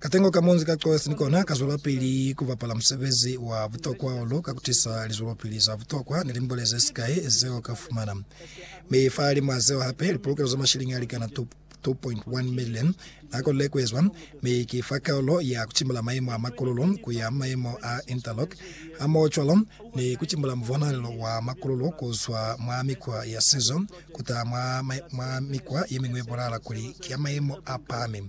Katengo ka munzi ka Coes ni kona ka zwelapili ku bapala musebezi wa butokwa hahulu ka ku tisa lizwelopili za butokwa ni limbole ze sikai zeo ka fumana. Mi fahalimw'a zeo hape, lipolokelo za mashiliñi a likana 2.1 milioni n'a konile ku ezwa, mi ki fa kaulo ya ku cimula mayemo a makululu ku ya mayemo a interlock, hamohocwalo ni ku cimula muvonahalelo wa makululu ku zwa mwa mikwa ya sizo ku taha mwa mikwa ye miñwi ye bonala kuli ki ya mayemo a pahami.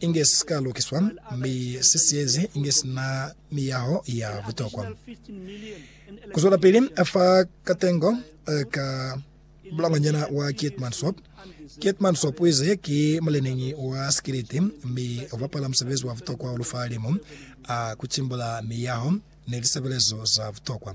inge si ka lukiswa mi si siyezi inge si na miyaho ya butokwa. Ku zwelapili fa katengo ka bulangwanyana wa Keetmansop, Keetmansop u ize ki muleneñi wa sikiliti mi u bapala musebezi wa butokwa hahulu fa limu a ku cimbula miyaho ni lisebelezo za butokwa.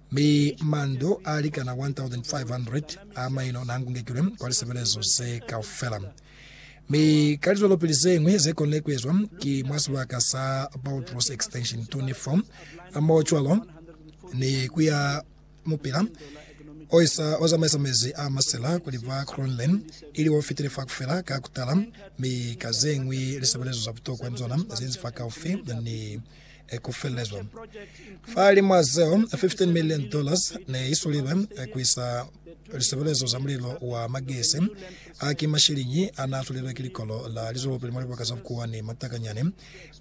Mi mando a likana 1,500 a maino n'a ngungekilwe kwa lisebelezo ze kaufela. Mi ka lizwelopili ze ñwi ze konile ku ezwa ki mwa sibaka sa Boutros Extension 24, moocwalo ni ku ya mupila o isa o zamaisa mezi a masila kuli ba Crownland, ili o fitile fa kufela ka kutala, mi ka ze ñwi lisebelezo za butokwa ni zona ze nzi fa kaufi ni e ku felezwa. Fa li mwa zeo, 15 million dollars ne i sulibe ku isa lisebelezo za mulilo wa magesi. A ki mashiliñi a n'a sulilwe ki likolo la lizwelopili mwa libaka za bukuwa ni matakanyani,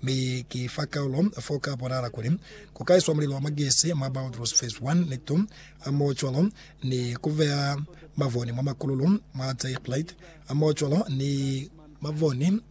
mi ki fa kaulo fo ka bonahala kuli ku ka iswa mulilo wa magesi mwa Boutross Phase 1 ni 2, hamohocwalo ni ku beya mavoni mwa makululu mwa Zeegleit, hamohocwalo ni mavoni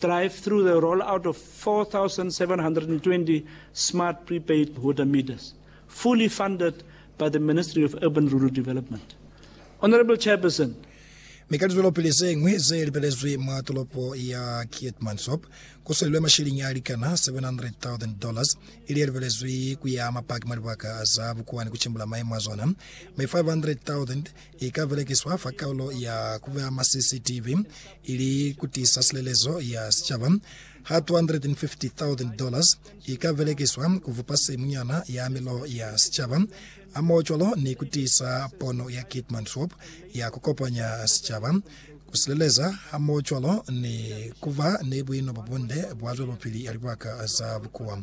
drive through the roll out of 4,720 smart prepaid water meters fully funded by the Ministry of Urban Rural Development. Honourable Chairperson, mi ka lizwelopili ze ñwi ze libelezwi mwa tolopo ya Keetmanshoop, ku swelilwe masheleñi a likana $700,000, ili ye libelezwi ku ya mapaki mwa libaka za bukuwani ku cimbula maemo a zona, mi 500,000 I ka belekiswa fa kaulo ya ku beya ma CCTV ili ku tiisa silelezo ya sicaba. Ha $250,000 i ka belekiswa ku vupa simunyana ya milo ya sicaba, hamohocwalo ni ku tiisa pono ya Keetmanshoop ya ku kopanya sicaba, ku sileleza hamohocwalo ni ku ba ni buino bo bunde bwa zwelopili ya libaka za bukuwa.